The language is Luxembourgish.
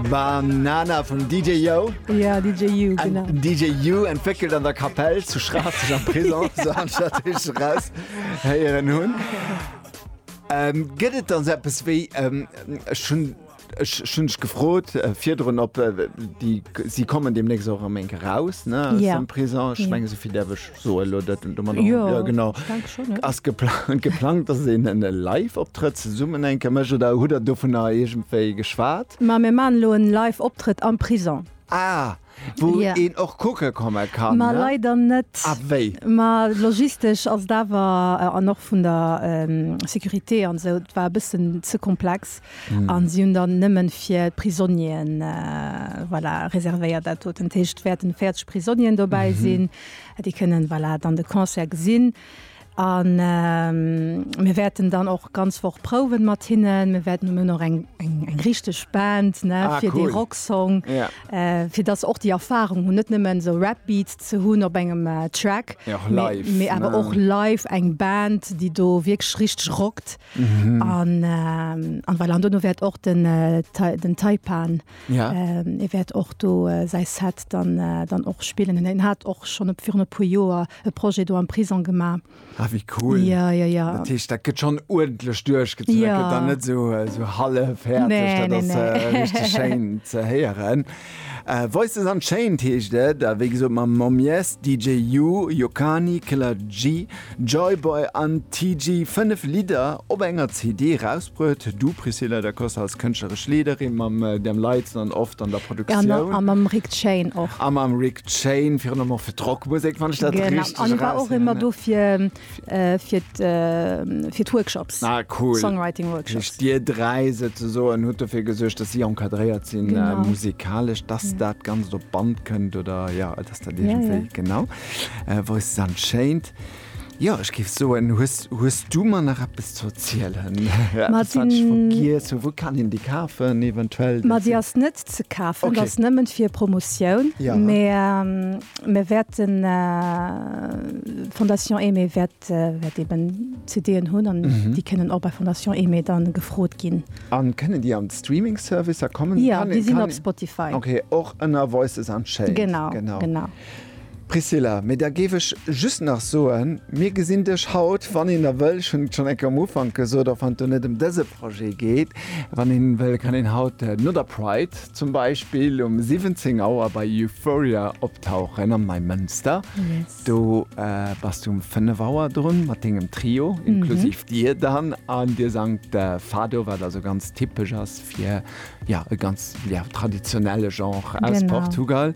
Banana vum DJ Yo. Ja, DJ You, An genau. DJ You entwéckelt an der Kapell zu Schraasseg am Prison, so anstatt ich raus héieren hunn. Ähm, gëtt et dann so etwas wéi, ähm, ech hunn ech schon dich gefrot äh, virdrun op äh, die sie kommen demnächst auch am enke raus ne aus Ja. dem Prison ich Ja. menge so viel derwech so ass geplant geplangt dass een en live optrëtt summen enke mech oder hu der do vun der egentéi geschwaart ma mir man lo en live optrëtt am prison ah wou een och kucke komme kann ma leider net ah wéi ma logistesch ass dawer an och vun der securité an sou war bëssen ze komplex an si hunn dann nëmmen fir prisonnieren voilà reservéiert dat doten heescht wäerten 40 prisonnieren dobäi sinn. Déi kënnen voilà dann de Concert gesinn a mir wäerten dann och ganz Woch prouwen mat hinnen. Mir wäerten, mir hunn och eng eng richteg Band ne fir dee Rocksong, fir datt se och déi Erfarung hunn, net nëmmen esou Rap Beats ze hunn op engem Track, mee awer och live eng Band déi do wierklech richteg rockt an voilà. An duerno wäert och den den Taipan Ja. Ee wäert och do säi Set dann och spillen. An en hat och schonn e virun e puer Joer e Projet do am Prisong gemaach. Ah, wéi cool. Ja, ja, ja. Dat heescht, dat gëtt schonn uerdentlech duerchgezu. Ja. Dat gëtt dann net esou hallefhäerzeg. Nee, nee, nee. Dat ass richteg schéin ze héieren. Voices Unchained heescht et. A wéi gesot, mam Momyes, DJ U, Yokani, Killer G, Joyboy an TG. Fënnef Lidder op enger CD eraus. Huet du Priscilla da Costa als kënschtleresch Leederin mam Dan Lites an oft an der Produktioun. A mam Rick Chain och. A mam Rick Chain, virun allem och fir d'Rockmusek, wann ech dat richteg eraus héieren. An ech war och ëmmer do fir d'Workshops, Songwriting Workshops. Ah cool. Heescht dir dräi souzesoen hutt dofir gesuergt, dass si encadréiert sinn musikalesch, dass dat Ganzt op d'Band kënnt oder jo, dass dat iergendwéi genau wousst. An schéint. Jo, ech géif soen, hues, hues du mer nach eppes ze erzielen? Eppes, wat ech vergiess hunn? Wou kann een déi kafen eventuell? Ma déi ass net ze kafen, okay. Ass nëmmen fir Promotioun. Ja. Mä mir wäerten, d'Fondation Aimée wäert, wäert eben CDen hunn an mhm. déi kënnen och bei Fondation Aimée dann gefrot ginn. An kënnen déi an Streaming-Servicer kommen? Ja, déi sinn op Spotify. Okay, och ënner Voices Unchained. Genau, genau. genau. Priscilla, Mee da géif ech just nach soen, mir gesinn dech haut, wann een da wëll, ech hunn et schonn eng Kéier am Ufank gesot, och wann et do net ëm dëse Projet geet, wann een wëll, kann een haut no der Pride zum Beispill um 17 Auer bei Euphoria optauchen am Neimënster. Do bass du um 5 Auer drun mat dengem Trio, inklusiv dir dann, an dir sangt Fado, wat also ganz typesch ass fir, ja, e ganz, ja, traditionelle Genre aus Portugal.